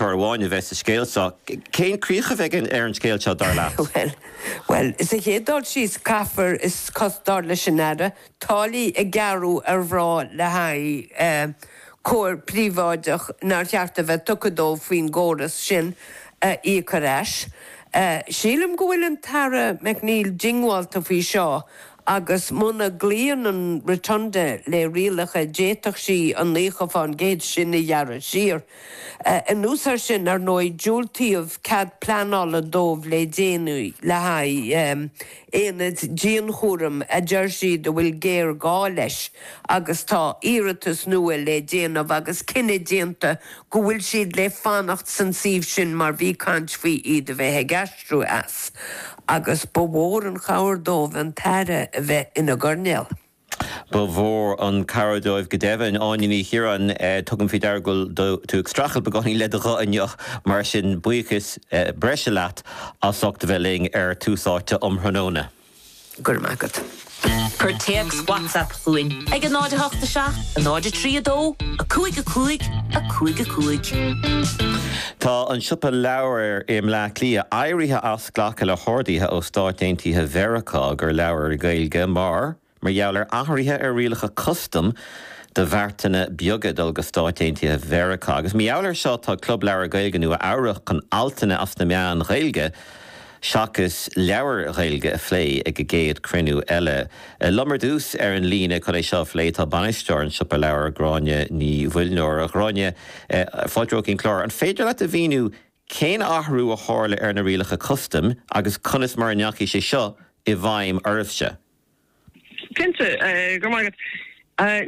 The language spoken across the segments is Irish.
Cor amháin a bheidh sa scéal seo. Cén críoch a bheidh ar an scéal seo, dar leat? Bhuel, sa chéad dul síos, caithfear, is cosúil, dar leis an Aire, táillí a ghearradh ar mhná le haghaidh cóir príobháideach nár cheart a bheith tugtha dóibh faoin gcóras sin a íoc ar ais. Sílim go bhfuil an tAire McNeill diongbháilte faoi seo agus muna gcloíonn an Rotunda leis na rialacha d'fhéadfadh sí an liúntas sin a ghearradh siar. Anuas air sin, ar ndóigh, diúltaíodh cead pleanála dóibh le déanaí le haghaidh aonad dianchúraim a deir siad a bhfuil géarghá leis agus tá iarratas nua le déanamh agus cinneadh déanta go bhfuil siad le fanacht san suíomh sin mar bhí caint faoi iad a bheith ag aistriú as agus ba mhór an chabhair dóibh an tAire a bheith ina gcoirnéal. Ba mhór an chabhair dóibh go deimhin. Áine Ní Chiaráin, Tugaim faoi deara go bhfuil tú ag streachailt beagáinín le do ghuth inniu, mar sin buíochas breise leat as ucht a bheith linn ar Tús Áite um thráthnóna. Go raibh maith agat. Cuir téacs WhatsApp chugainn ag 08 7 03 2 5 5 5 5. Tá An Siopa Leabhar i mBleá Cliath éirithe as. glacadh le horduithe ó Stáit Aontaithe Mheiriceá do leabhair Ghaeilge mar mar gheall ar athruithe ar rialacha custaim do bheartanna beaga ag dul go Stáit Aontaithe Mheiriceá agus mar gheall air seo tá Club Leabhar Gaeilge Nua Eabhrach chun altanna as na meáin Ghaeilge seachas leabhair Ghaeilge a phlé ag a gcéad cruinniú eile. Liom ar dtús ar an líne chun é seo a phlé tá Bainisteoir An Siopa Leabhar, Gráinne Ní Mhuilneoir. A Ghráinne, fáilte go dtí an clár, an féidir leat a mhíniú cén t-athrú a tharla ar na rialacha custaim agus conas mar a chuaigh sé seo i bhfeidhm oraibhse? Cinnte, go raibh maith agat.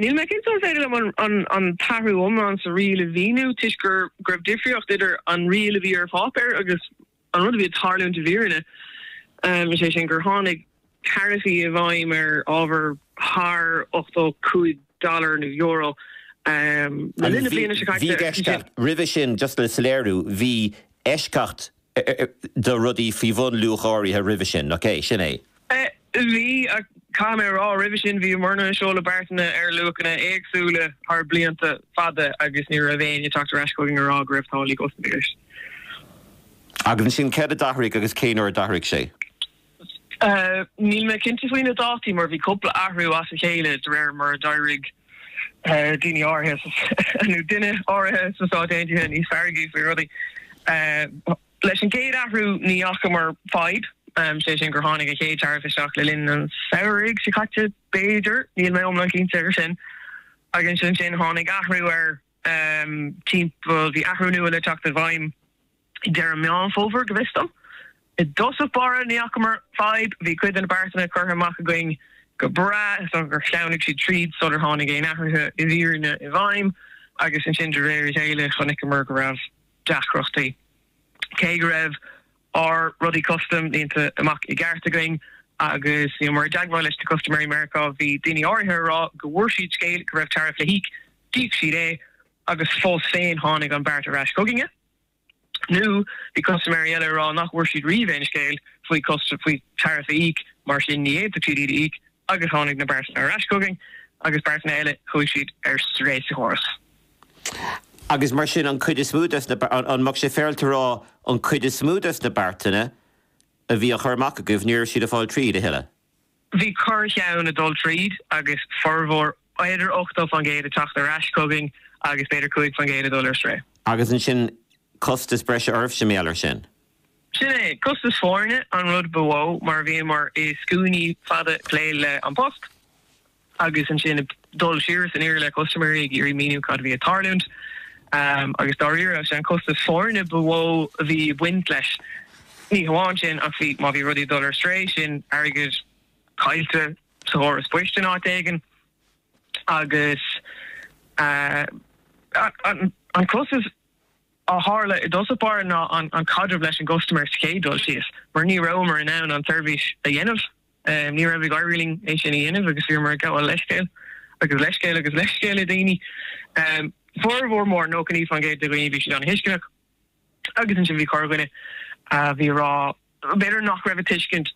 Níl mé cinnte an féidir liom an t-athrú iomlán sa riail a mhíniú toisc go raibh difríocht idir an riail a bhí ar pháipéar agus an rud a bhí ag tarlúint i bhfírinne, is é sin gur tháinig. taraifí i bhfeidhm ar ábhar thar 85 dollar nó euro le linn na bliana seo caite. Bhí eisceacht roimhe sin, just le soiléiriú, bhí eisceacht do rudaí faoi bhun luach áirithe roimhe sin, ok? Sin é. Bhí, ach caithfidh mé a rá, roimhe sin bhíomarna ag seoladh beartanna ar luachanna éagsúla thar blianta fada agus ní raibh éinne ag teacht ar ais chugainn ag rá go raibh táillí custam i gceist. Agus ansin céard a d'athraigh agus cén uair a d'athraigh sé? Níl mé cinnte faoi na dátaí mar bhí cúpla athrú as a chéile de réir mar a d'éirigh daoine áirithe, nó duine áirithe, sna Stáit Aontaithe níos feargaí faoi rudaí. Leis an gcéad athrú ní fhacamar fadhb, sé sin gur tháinig an chéad taraif isteach le linn an samhraidh seo caite b'fhéidir, níl mé iomlán cinnte ar sin. Agus ansin tháinig athrú ar timpeall, bhí athrú nua le teacht i bhfeidhm. ag deireadh Meán Fómhair, go bhfios dom. I dtosach báire, ní fhacamar fadhb. Bhí cuid de na beartanna curtha amach againn go breá, is dócha gur shleamhnaigh siad tríd sular tháinig aon athruithe i bhfírinne i bhfeidhm, agus ansin de réir a chéile chonaiceamar go raibh deacrachtaí. Cé go raibh ár rudaí custaim líonta amach i gceart againn agus bhíomar i dteagmháil leis na custaiméirí i Meiriceá, bhí daoine áirithe ag rá go bhfuair siad scéal go raibh taraif le híoc, d'íoc siad é, agus fós féin tháinig an beart ar ais chugainne. Nó bhí custaiméirí eile ag rá nach bhfuair siad riamh aon scéal faoi taraif a íoc, mar sin ní fhéadfadh siad iad a íoc agus tháinig na beartanna ar ais chugainn agus beartanna eile, chuaigh siad ar strae sa chóras. Agus mar sin an cuid is mó des na, an mbeadh sé féaráilte a rá an cuid is mó des na beartanna a bhí á chur amach agaibh ní raibh siad ag fáil tríd a thuilleadh? Bhí corr-cheann ag dul tríd agus formhór, b'fhéidir 80% ag teacht ar ais chugainn agus b'fhéidir 5% ag dul ar strae. Agus ansin costas breise oraibhse mar gheall ar sin? Sin é, costas foirne an rud ba mhó mar bhíomar i scuainí fada ag plé le 'An Post' agus ansin ag. dul siar is aniar le custaiméirí ag iarraidh míniú cad a bhí ag tarlúint agus dáiríre, sé an costas foirne ba mhó a bhí ag baint leis. Ní hamháin sin ach bhí, má bhí rudaí ag dul ar strae, sin airgead caillte sa chóras poist in áit éigin agus an costas a tharla i dtosach báire ná an caidreamh leis an gcustaiméir sa chéad dul síos mar ní rabhamar in ann an tseirbhís a dhéanamh. Ní raibh ag éirí linn é sin a dhéanamh agus bhíomar ag gabháil leithscéil agus leithscéil agus leithscéil le daoine. Formhór mór, 99% de dhaoine, bhí siad an-tuisceanach agus ansin bhí corrdhuine a bhí ag rá b'fhéidir nach raibh ag tuiscint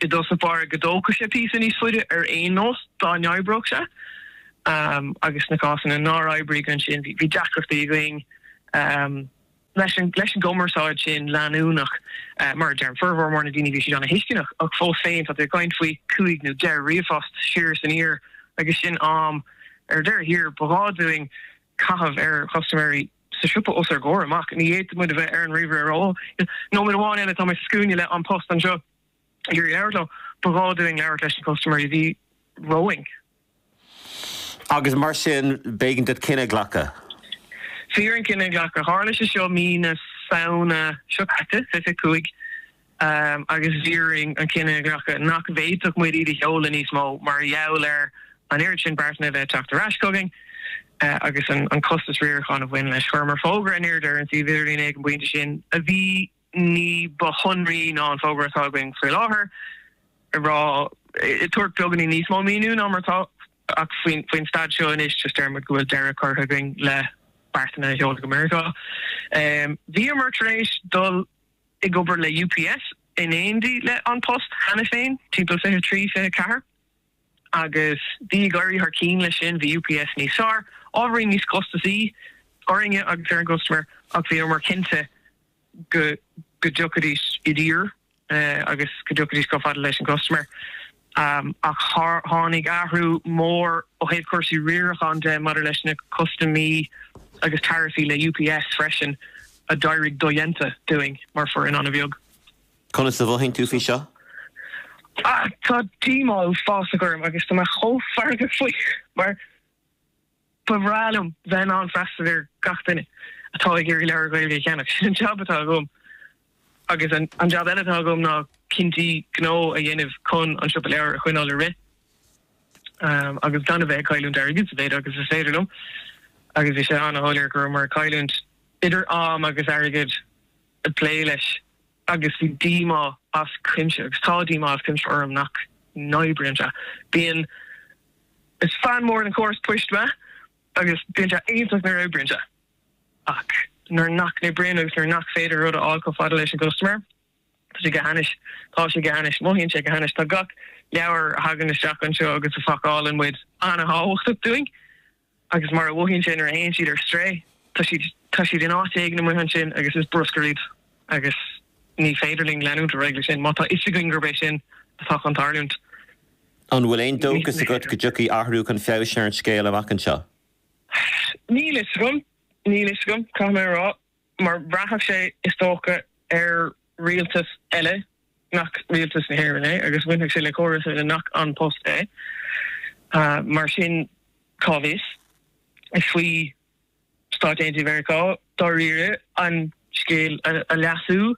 i dtosach báire go dtógfadh sé píosa níos faide ar aon nós dá n-oibreodh sé agus sna cásanna nár oibrigh ansin bhí deacrachtaí againn. Leis an gcumarsáid sin leanúnach, mar a deirim, formhór mór na daoine bhí siad an-thuisceanach, ach fós féin tá tú ag caint faoi chúig nó deich ríomhphost siar is aniar agus sin am ar deireadh thiar ba ghá dúinn caitheamh ar chustaiméirí sa siopa os ár gcomhair amach. Ní fhéadfadh muid a bheith ar an ríomhaire ar ó nóiméad amháin eile, tá mé sa scuaine le An Post anseo. iarraidh labhairt leo. Ba ghá dúinn labhairt leis na custaiméirí a bhí romhainn. Agus mar sin, b'éigean dúinn cinneadh a ghlacadh. Bhí orainn cinneadh a ghlacadh. Tharla sé seo mí na Samhna seo caite, 25, agus bhí orainn an cinneadh a ghlacadh nach bhféadfadh muid iad a sheoladh níos mó mar gheall ar an oiread sin beartán a bheith ag teacht ar ais chugainn agus an costas riaracháin a bhain leis. Chuireamar fógra aniar aduaidh ar an suíomh idirlín ag an bpointe sin a bhí ní ba shonraí ná an fógra atá againn faoi láthair, ag rá, ag tabhairt beagainín níos mó míniú ná mar atá ach faoin stad seo anois, just deir muid go bhfuil deireadh curtha againn le beartanna a sheoladh go Meiriceá. Bhíomar tar éis dul ag obair le UPS in éindí le An Post cheana féin, timpeall fiche trí, fiche ceathair. agus bhí ag éirí thar cinn leis sin. Bhí UPS níos fearr, ábhairín níos costasaí orainne agus ar an gcustaiméir ach bhíomar cinnte go dtiocfaidís i dtír agus go dtiocfaidís chomh fada leis an gcustaiméir. Ach tháinig athrú mór ó thaobh cúrsaí riaracháin de maidir leis na custaimí agus taraifí le UPS freisin a d'éirigh dodhéanta dúinn mar foireann an-bheag. Conas a mhothaíonn tú faoi seo? Tá díomá uafásach orm agus tá mé chomh feargach faoi mar ba bhreá liom bheith in ann freastal ar gach duine atá ag iarraidh leabhair Ghaeilge a cheannach. Sin an jab atá agam agus an jab eile atá agam ná cinntí gnó a dhéanamh chun an Siopa Leabhar a choinneáil ag rith agus gan a bheith ag cailliúint airgid sa mhéid agus is féidir liom. Agus bhí sé an-shoiléir go raibh muid ag cailliúint idir am agus airgead. ag plé leis agus bhí díomá as cuimse agus tá díomá as cuimse orm nach n-oibríonn sé. Bíonn, is fan mór den chóras poist mé agus bíonn sé iontach nuair a oibríonn sé ach nuair nach n-oibríonn agus nuair nach féidir rud a fháil chomh fada leis an gcustaiméir, tá sé go hainnis. Tá sé go hainnis. Mothaíonn sé go hainnis. Tá gach leabhar a thagann isteach anseo agus a phacálann muid an-thábhachtach dúinn. Agus mar a mhothaíonn sé nuair a théann siad ar strae? Tá siad, tá siad in áit éigin amuigh ansin agus is bruscar iad agus ní féidir linn leanúint ar aghaidh leis sin má tá fhios againn gurb é sin atá chun tarlúint. An bhfuil aon dóchas agat go dtiocfaidh athrú chun feabhais ar an scéal amach anseo? Níl fhios agam, níl fhios agam, caithfidh mé a rá. mar bhraithfeadh sé, is dócha, ar rialtas eile nach rialtas na hÉireann é agus bhainfeadh sé le córas eile nach An Post é. Mar sin, cá bhfios? Is faoi Stáit Aontaithe Mheiriceá dáiríre an scéal a leasú.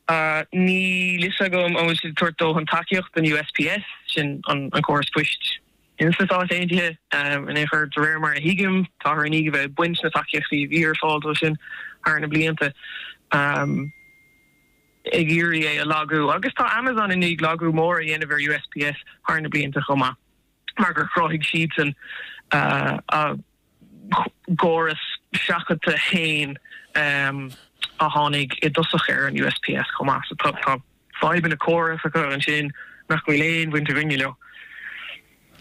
a. Níl fhios agam an bhfuil siad ag tabhairt dóthain tacaíochta don USPS, sin an córas poist in sna Stáit Aontaithe, in aon chor. De réir mar a thuigim, táthar i ndiaidh a bheith ag baint na tacaíochtaí a bhí ar fáil dó sin thar na blianta, ag iarraidh é a lagú. Agus tá Amazon i ndiaidh lagú mór a dhéanamh ar USPS thar na blianta chomh maith mar gur chruthaigh siadsan a. gcóras seachadta féin a tháinig i dtosach ar an USPS chomh maith. Tá fadhbanna córasacha ansin nach bhfuil aon bhaint againne leo.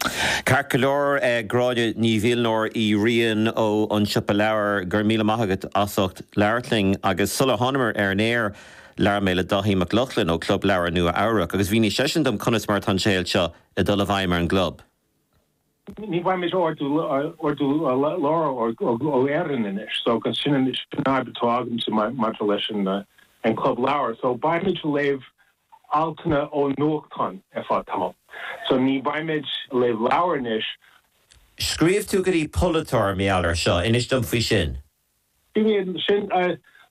Ceart go leor, Gráinne Ní Mhuilneoir Uí Riain ó An Siopa Leabhar, go raibh míle maith agat as ucht labhairt linn. Agus sular thánamar ar an aer, labhair mé le Dáithí Mac Lochlainn ó Club Leabhar Nua-Eabhrac agus mhínigh seisean dom conas mar atá an scéal seo ag dul i bhfeidhm ar an gclub. Ní bheimid ag ordú leabhar ó Éirinn anois so agus sin an fhadhb atá againne maidir leis an club leabhar. So beimid ag léamh altanna ó nuachtáin ar feadh tamall. So ní bheimid ag léamh leabhar anois. Scríobh tú go dtí polaiteoir mar gheall air seo. Inis dom faoi sin. Ciallaíonn sin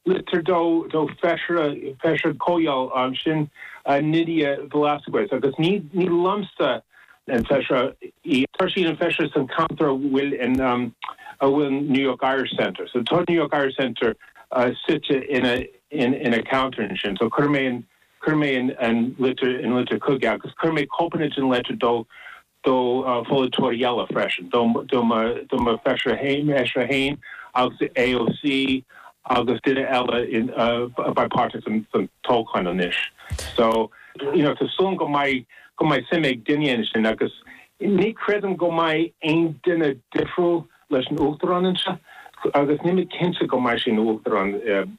litir do Feisire Comhdhála ansin Nydia Velázquez agus ní liomsa an Feisire í. Tá sí ina Feisire san cheantar a bhfuil an New York Irish Centre. So tá New York Irish Centre suite ina ceantar ansin. So chuir mé an litir chuige agus chuir mé cóipeanna den litir do do polaiteoir eile freisin, do mo Feisire féin agus AOC agus duine eile a bheidh páirteach san toghchán anois. So, you know, tá súil agam go mbeidh suim ag duine éigin ansin agus ní chreidim go mbeidh aon duine difriúil leis an Uachtarán anseo agus níl mé cinnte go mbeidh sé ina Uachtarán.